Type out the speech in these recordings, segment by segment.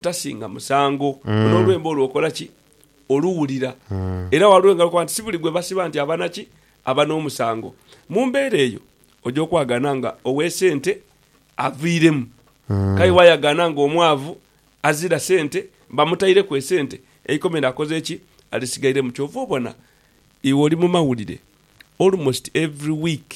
Tasinga musango. N'olwemba olwo okola ki? Oluwulira. Era waliwo engalo okukoba nti si buli gwe basiba nti aba na ki? Aba n'omusango. Mu mbeera eyo, oja okwagaana nga owe sente aviiremu. K'aye wayagaana nga omwavu azira sente bamutaireku esente, eikomera akoze ki? Alisigairemu. Kyova obona iwe oli mu mawulire almost every week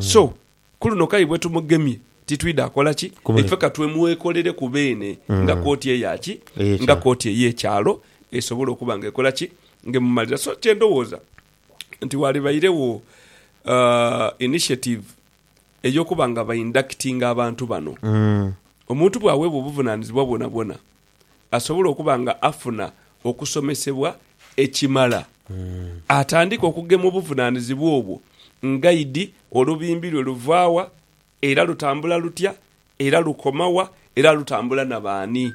So, ku luno k'aye bwe tumugemye, titwidha kola ki? Ife ka twemwekolereku beene nga kooti eya ki? Nga kooti ey'ekyalo esobola okuba nga ekola ki? Nga emumalira. So, kye ndowooza nti waalibairegho initiative ey'okuba nga ba inductinga abantu bano. Omuntu bw'aweebwa obuvunaanyizibwa bwonabwona, asobole okuba nga afuna okusomesebwa ekimala, atandike okugema obuvunaanizibwa obwo nga idi, olubimbi lwe luva wa era lutambula lutya era lukoma wa era lutambula na baani.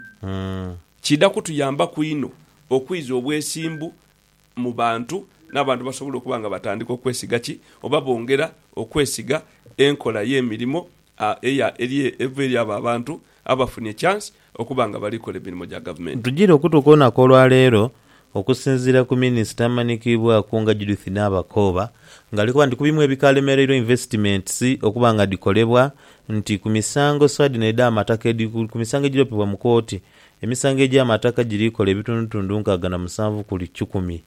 Kiidha kutuyambaku inho okwiza obwesimbu mu bantu, n'abantu basobola okuba nga batandika okwesiga ki? Oba bongera okwesiga enkola y'emirimo eya eri eva eri abo abantu abafunye ekyansi okuba nga bali kola emirimo gya gavumenti. Tujire okutuuka olunaku olwa leero, okusinziira ku minisita amanhikiibwaku nga Judith Nabakooba nga ali kuba nti ku bimu ebikalemereirwa investments okuba nga dhikolebwa nti ku misango sua dhino edh'amataka edhiri ku misango egiri opibwa mu kooti Emisango egy'amataka giri kola ebitundutundu nkaaga na musanvu ku buli kikumi,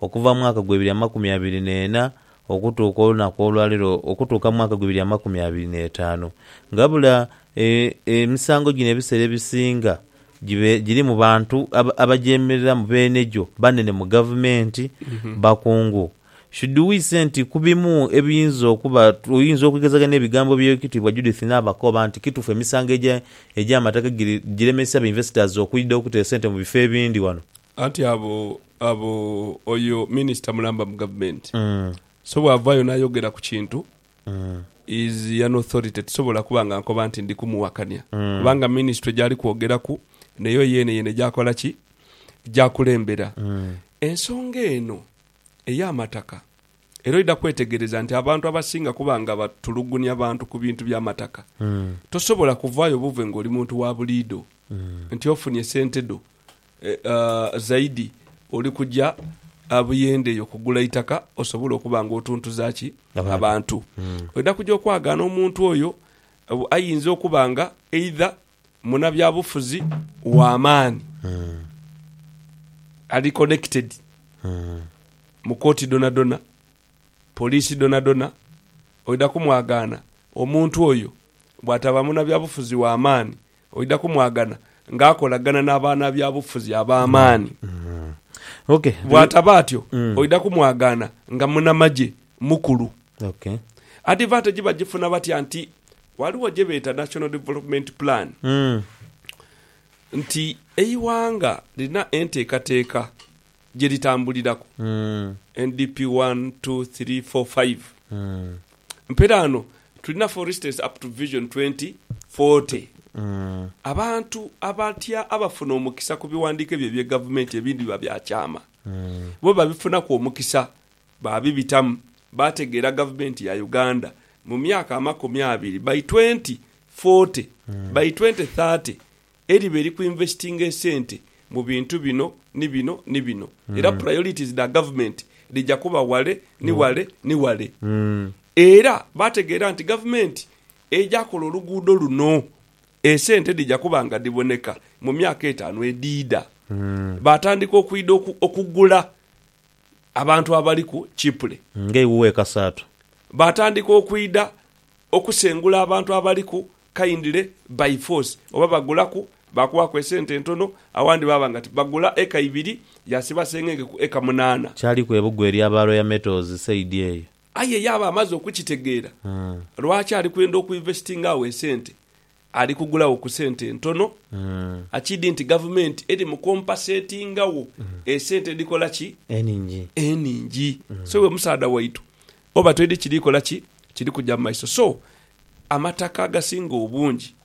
okuva mu mwaka gw'ebiri amakumi abiri n'ena okutuuka olunaku olwa leero okutuuka mu mwaka gw'ebiri amakumi abiri n'etaanu. Ngabula e, emisango gino ebiseera ebisinga gibe giri mu bantu aba, abagyemereramu beene gyo, banene mu gavumenti, bakungu, Shidhuwiise nti ku bimu ebiyinza okuba, oyinza okwegezaganya ebigambo by'Owekitiibwa Judith Naabakoba nti kituufu emisango egy'amataka giremesa ba investors okwidha okutera sente mu bifo ebindi wano. Anti abo, abo, oyo minister mulamba mu government, so bwavaayo nayogera ku kintu, is an authority, tisobola kuba nga nkoba nti ndi kumuwakania kubanga ministry gyali kwogeraku neyo yeene yeene gyakola ki? Gyakulembera ensonga eno. ey'amataka era oidha kwetegereza nti abantu abasinga kuba nga batulugunia bantu ku bintu bya mataka. Tosobola kuvaayo buve ng'oli muntu wa buliidho nti ofunye sente dho zaidi oli kuja Buyende eyo kugula itaka osobole okuba nga otuntuza ki abantu. Oidha kuja okwagaana omuntu oyo, aidha okuba nga eidha munabyabufuzi wa maani ali connected mu kooti dhonadhona, poliisi dhonadhona, oidha kumwagaana omuntu oyo bwataba munabyabufuzi wa maani, oidha kumwagana nga akolagana nabanabyabufuzi abamaani. Bwataba atyo, oidha kumwagaana nga munamagye mukulu. Ok. Advantage bagifuna batya nti ghaligho gye beeta National Development Plan nti eighanga lirina enteekateeka gye litambuliraku, NDP one, two, three, four, five. Mperaano tulina for instance up to Vision twenty forty. Abantu abatya abafuna omukisa ku bighandiiko ebyo eby'egavumenti ebindi biba bya kyama. Bo babifunaku omukisa Baabibitamu, baategeera gavumenti ya Uganda mu myaka amakumi abiri, by twenty forty, by twenty thirty, eriba eri ku investinga esente mu bintu bino ni bino ni bino, era priorities dha gavumenti dhija kuba wale ni wale ni wale. Era baategeera nti gavumenti eja kola oluguudo luno, esente dhija kuba nga dhiboneka mu myaka etaanu edhiidha. Baatandika okwidha okugula Abantu abali ku Chipre. Ng'eiwuwe ekasaatu. Baatandika okwidha okusengula abantu abali ku Kindle by force. Oba bagulaku, baakuwaaku esente entono, awandi baaba nga ti. Bagula eka ibiri, yaasiba sengenge ku eka munaana. Kyaliku ebugo erya ba Royal Metals sayidi eyo. Aye yaaba amaze okukitegeera, lwaki ali kwenda okwinvestinga agho esente Ali kugulagho ku sente entono. Akidi nti gavumenti eri mu kompasetingagho esente edhikola ki? Enhingi. Enhingi. So iwe musaadha waitu oba toidhi kiri kola ki? Kiri kuja mu maiso. So, amataka agasinga obungi